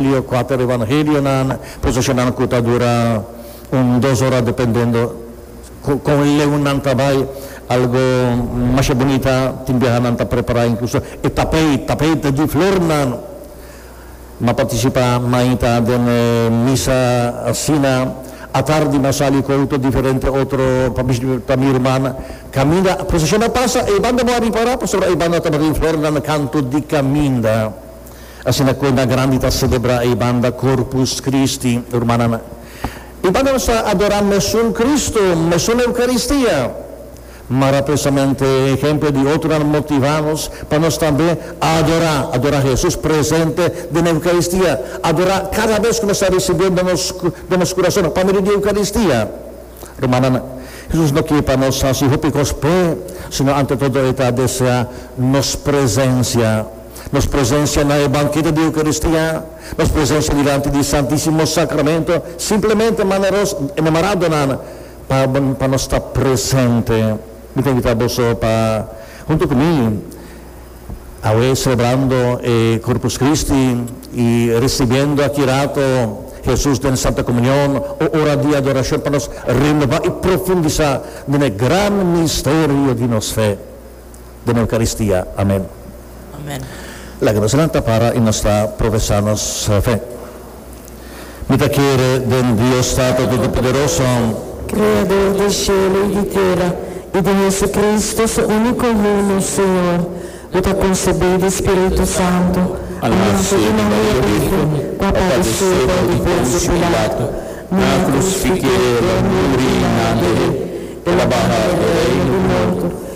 Lea kuater Evangelionan, posishonando ku ta dura un dos ora dependendo ku kon leu nan ta bai. Algu masha bunita tin biaha nan ta prepará inkluso e tapeit, tapeit di flornan. M'a partisipá mainta den e misa asina. Atardi m'a sali ku outo diferente otro pa bishita mi ruman. Kaminda posishon a pasa, e banda bo a ripará pasobra e banda tabata den flornan kantu di kaminda. Asina kuenta grandi ta selebrá e banda Corpus Christi, rumannan. E banda nos ta adorá mesun Cristo, mesun Eukaristia. Mara presamente e ehemplo di otronan motivá nos pa nos tambe adorá, adorá Hesus presente den Eukaristia, adorá kada bes ku nos ta risibiendo den nos kurason pa medio di Eukaristia. Rumannan, Hesus no kier pa nos hasi hopi kos p'e, sino ante todo e ta desea nos presensia. Nos presensia na e banketo di Eukaristia, nos presensia dilanti di Santisimo Sakramentu, simplemente manda nos enamará donan pa pa nos ta presente. Mi ta invitá boso pa huntu ku mi. Awe celebrando e Corpus Christi y ricibiendo aki rato Jesús den Santa Comunión, o ora di adoracion pa nos renova y profundisa den e gran misterio di nos fe, den e Eucaristia. Amen. Laga nos nan ta para y nos ta profesa nos fe. Mi ta kere den Dios Tata Totopoderoso. Kreador di shelu i di tera, i di JesuCristo, Su úniko Yu, nos Señor, ku ta konsebí di spiritu santu, a nase di Maria Bírgen, pa padesé for di Ponsiu Pilatu, nan a krusfiké El, a muri i nan deré, El a baha e reino di morto,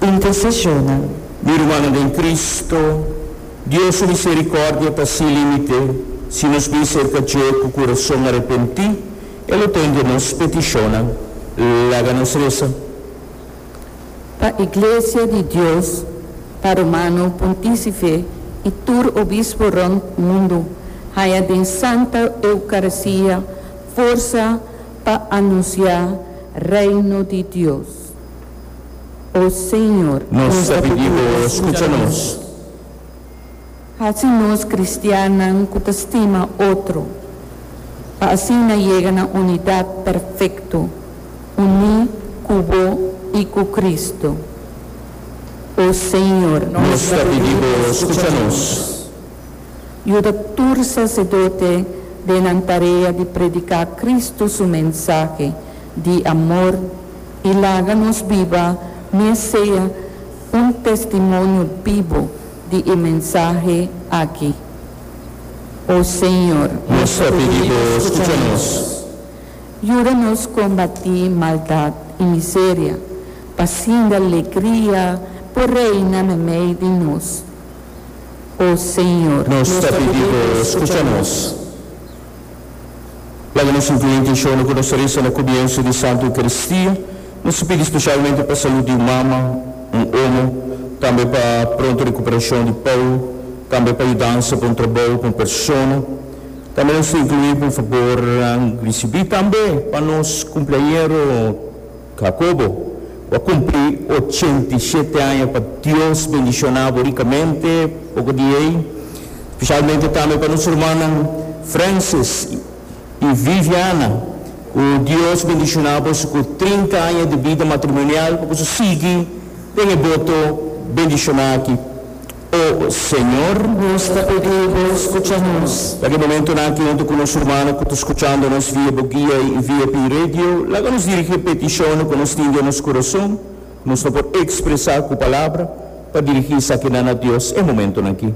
Intercesiona. Mi rumannan den Cristo, Dios su misericordia ta sin limite si nos bin cerca dje cu curason arepenti, e lo tende nos peticionnan. Laga nos reza. Pa Iglesia di Dios, pa Romano Pontifice y tur Obispo rond mundo, haya den Santa Eucaristia forza pa anuncia Reino di Dios. O Señor, nos ta pidi Bo skucha nos. Hasi nos kristiannan ku ta stima otro, pa asina yega na unidat perfekto, uní ku Bo i ku Kristu. O Señor, nos ta pidi Bo skucha nos. Yuda tur saserdote den nan tarea di prediká Kristu su mensahe di amor, i laga nos biba mes sea un testimonio bibo di e mensahe aki. O Señor, nos ta pidi Bo skucha nos. Yuda nos kombatí maldad i miseria, pasinda legria por reina na mei di nos. O Señor, nos ta pidi Bo skucha nos. Laga nos sinti e intenshonnan ku nos ta resa na kumiensu di Santu Eukaristia. Nos ta pidi spesialmente pa salut di un mama, un omo, tambe pa pronto rekuperashon di Pau, tambe pa yudansa pa un trabou, pa un persona. Tambe nos ta inkluí pa un fabornan risibí. Tambe pa nos kumpliañero. Jacobo, bo a cumpli ochenta i shete aña pa Dios bendiciona bo ricamente oko di ei, specialmente tambe pa nos hermannan Francis i Viviana cu Dios bendiciona boso cu trinta aña di bida matrimonial pa boso sigui den e boto bendiciona aki. O Señor, nos ta pedí Bo scucha nos. Na ki momentonan aki huntu cu nos hermano cu ta scuchando nos via bo guia y via pi radio, laga nos dirigi e peticionnan cu nos tin den nos corazon, cu nos no por expresa cu palabra, pa dirigi esakinan na Dios e momentonan aki.